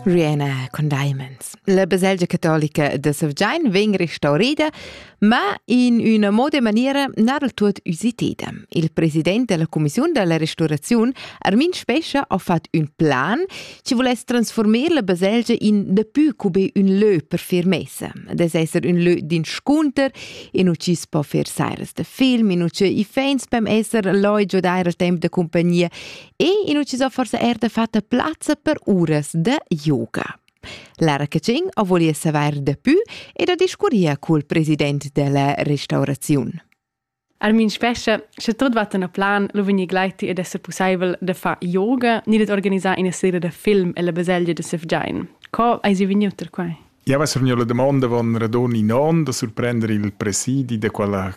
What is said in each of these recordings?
Rihanna con Diamonds. La baselgia catolica da Sevgian vegn restaurida, ma in una moda maniera non del tut usiteda. Il president della commissione della restaurazione, Armin Spescha, ha fatto un plan che volesse trasformare la baselgia in dapiù come un leu per firmeza. Das esser un leu d'inscunter, in uci si può fare sairas de film, in uci i fans beim esser loi giodare al tempo de compagnia e in ucciso forse er de fatta plazza per uras de yoga. Lara Cecin a volia saver de più ed a discuria col president della restaurazione. Armin spescha, sche tot va a plan, lo veni gleiti ed esse possibel de fa yoga ni de organizzare una serie de film e la baselgia de Sefgiain. Co hai si vegniut per quai? Ja, was mir la domanda van radon in on da surprendere il presidi de quella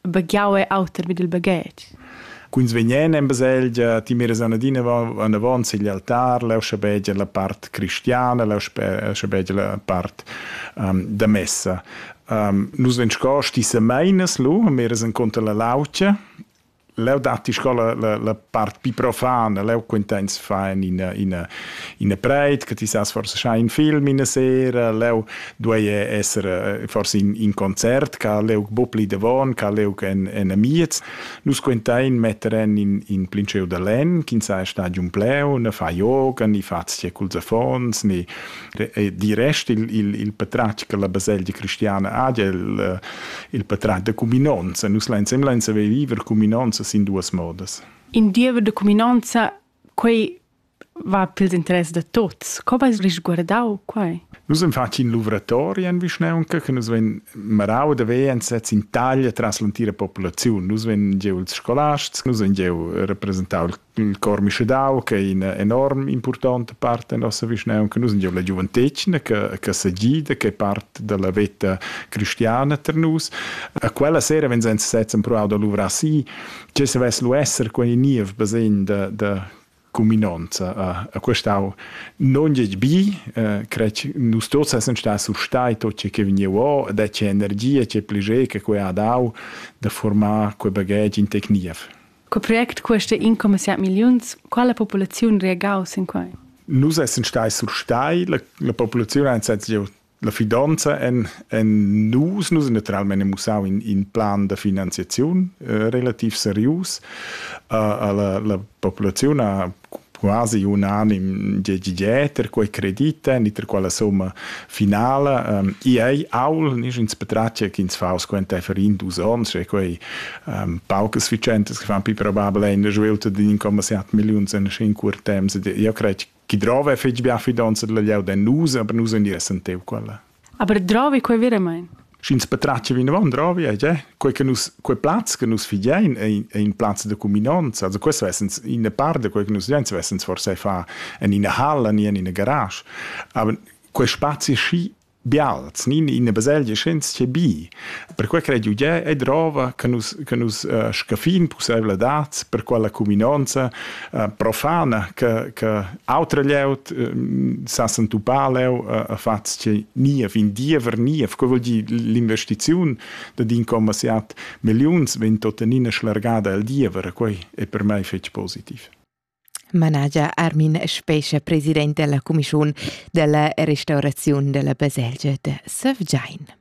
baghiau e auter vid il baghetg. Cuns vegnan en baselgia, ti miras anadina anavon sigl altar, leu schabegia la part cristiana, leu schabegia la part um, da messa. Um, nus vegn sco sti semeinas lu, miras encunter la laucia, leu datti sco la, la, la part pi profana, leu quinteins fa ina, ina, ina preit, che ti sas forse schai in film ina sera, leu duei esser forse in, in concert ca leuc bo pli devon ca leuc en, en amiez nus quentein metter en in, in plinceu da len ch'in sa stadium pleu ne fa yoga ni fa sia culs affons ni di rest il, il, il patratg che la baselgia cristiana ha il, il patratg de cuminonza nus lensem lensa viver cuminonza sin duas modas in diever de cuminonza quei va pils interess da tuts. Co vais risguardau quei? Nus en facin luvratori en vischnaunca che nus vein marau da ver ensetz in taglia tras l'entira populaziun. Nus vein giu ils scolasts, nus vein giu representau il cor mischedau che è ina enorm importante part en nossa vischnaunca. Nus vein giu la giuventetgna che, che segida, che è part dalla veta cristiana per nus. A quella sera vegn ensetz empruau da luvrar si, che savess lu esser quei niev basegn da, da cuminonza a questau non gli bi crec nus tots essen sta su stai tot ce che vegniu da che energia che pliger che quei ha dau da formar quei bagage in tecnief Co project queste 1,7 milliuns quala populaziun reagau sin quei Nus essen stai sur stai la, la populaziun ha La fidanza en, en nus, nus naturalmein ha mussau in, in plan da finanziaziun eh, relativ serius. Uh, la, la populaziun ha quasi unanim dieter quei credit niter quella somma finala. Um, I ei aul nigins petratge ch'ins fa squenteifer in dus ons, e quei um, paucas sufficientas che fan più probabile in svilta di 1,7 million in 5 temps. Io crei Chi drova è fetg bia fidonza dalla glieud en nus, aber nus ein ier sentev quella. Aber drovi quei veramein? Sch'ins patratga vinavon, drovi è tgè. Quei che nus, quei plaz che nus figein è, è in plaz de cuminonza. Also questo essens ina part de quei che nus figein, svessens forse fa en ina hall, en in garage. Aber quei spazi schi bials, nin ina baselgia senzia bi. Perquei crei jeu gie e drova che nus che nus uh, scaffin pusseivladads per quella cuminonza uh, profana che che autra glieud uh, sa s'entupar leu uh, a fatg che ni a fin diever ni a co vuol dir l'investiziun da din commasiat milliuns vegn tuttenina schlargada al diever e quei è per mei fetg positiv. managia Armin Spescha, president della cumischiun della restauraziun della baselgia de Sevgein.